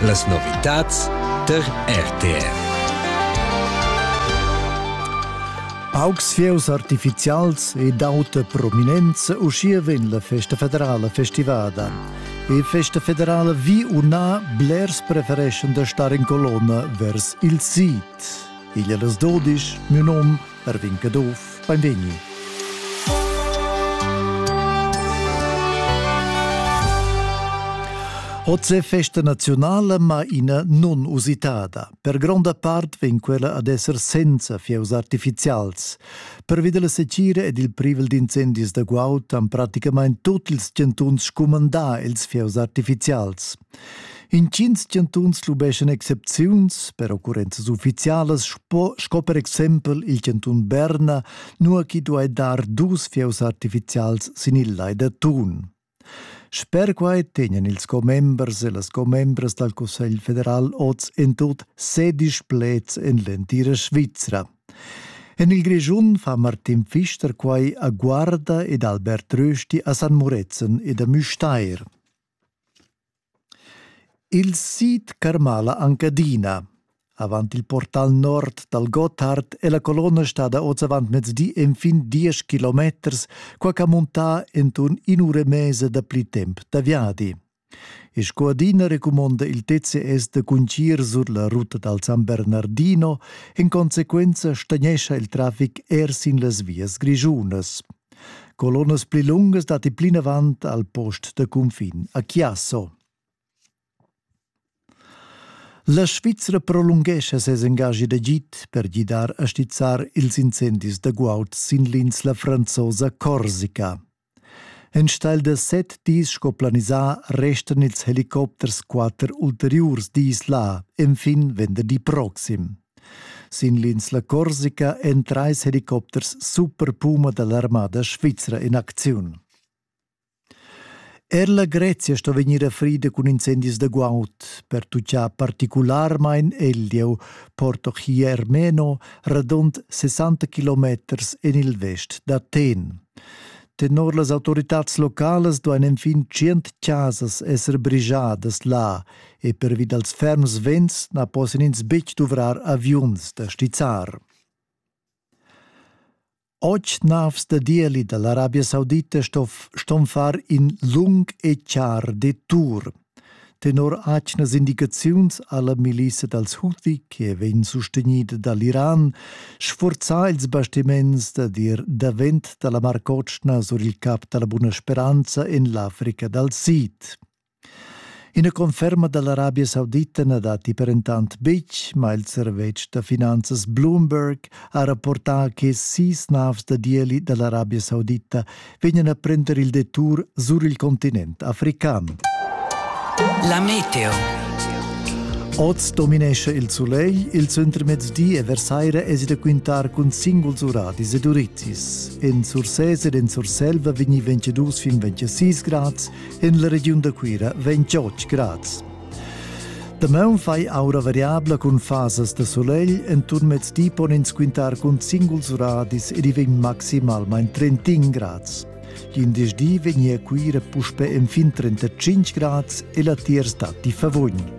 Las novitads tar RTR. Augs fieus artificials e d'auta prominenza uschia vegn la festa federala festivada. E festa federala vi u na, blers prefereschan da star in colonna vers il sid. Igl è las 12, mio nom Erwin Caduff, beinvegni. Oz è festa nazionale, ma ina non usitada. Per gronda part vegn quella ad esser senza fieus artificials. Pervi della secira ed il privel d'incendis da guaud han praticamain tutti ils chantuns scumandà ils fieus artificials. Intgins chantuns lubeschan excepziuns per occurrenzas uffizialas sco, sco per exempel il chantun Berna, nua chi duai dar dus fieus artifizials sin il lai da Thun. Sper quai tegnan ils commembers e las commembras dal Cussegl federal oz en tut sedisch pleds en l'entira Svizra. En il Grischun fa Martin Pfister quai a Guarda ed Albert Rösti a San Murezzan ed a Müstair. Il sid carmala anc adina. Avant il portal nord dal Gotthard è la colonna stada oz avantmezdi enfin diesch kilometers, qua ch'ha muntà enturn in'ura e mesa dapli temp da viadi. E sco adina recumonda il TCS da cuncir sur la ruta dal San Bernardino, en consequenza stagnescha il traffic er sin las vias grischunas. Colonnas pli lungas datti plinavant al post da cunfin a Chiasso. La Svizra prolunghescha ses engagi d'agid per gidar a stizzar ils incendis da guaud sin l'insla franzosa Corsica. Enstagl da set dis sco planisà restan ils helicopters quatter ulteriurs dis là, enfin venderdi proxim. Sin l'insla Corsica èn trais helicopters superpuma da l'armada svizra en acziun. Er la Grezia sto vegnir frida cun incendis da guaud, pertutgà particularmain Eldieu, Porto Chiermeno, radund 60 kilometers en il vest d'Athen. Tenor las autoritads localas duain enfin tschient chasas esser brigiadas là, e pervi dals ferms vents na possan ins betg duvrar aviuns da stizzar. Och navs da dieli da l'Arabia Saudita stoff ston far in lung e char detour. Tenor atgnas indicaziuns alla milissa dals Houthi, che vegn sustegnida dall'Iran, sforzà ils bastiments da dir davent dalla Mar Cotschna sur il cap dalla Buna Speranza en l'Africa dal Sid. Ina conferma dall'Arabia Saudita na datti per entant betg, ma il servetsch da finanzas Bloomberg ha rapportà che sis navs da ieli dall'Arabia Saudita vegnan a prender il detour sur il continent african. La meteo. Oz dominescha il sulegl, il centremezdi e versaira esi da quintar cun singuls uradis ed urizis. En Sursés ed en Surselva vegni 22 fin 26 grads, en la regiun da Cuira vegn Giotg grads. Damaun fai aura variabla cun fasas da solegl, enturn mezdi pon ins quintar cun singuls radis ed i vegn maximalmain 31 grads. Glindesdi vegnia Cuira puspe en fin 35 grads e la tier stati favugn.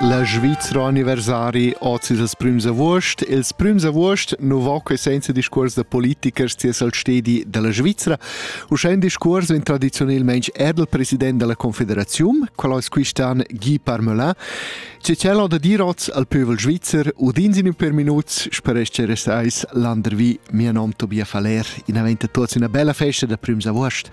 La Svizra Universitari oz ils prüms avuost. Ils prüms avuost nu va que senza discuors da politikers ties al stedi della Svizra. Uschè un discuors vegn tradizionelmente er del president della Confederazione, qual es quistan Guy Parmelin. Se c'è da dir oz al pövel svizzer, udins in un per minuts, speresce resais landervi, mia nom Tobias Faller, in aventa tuots una bella festa da prüms avuost.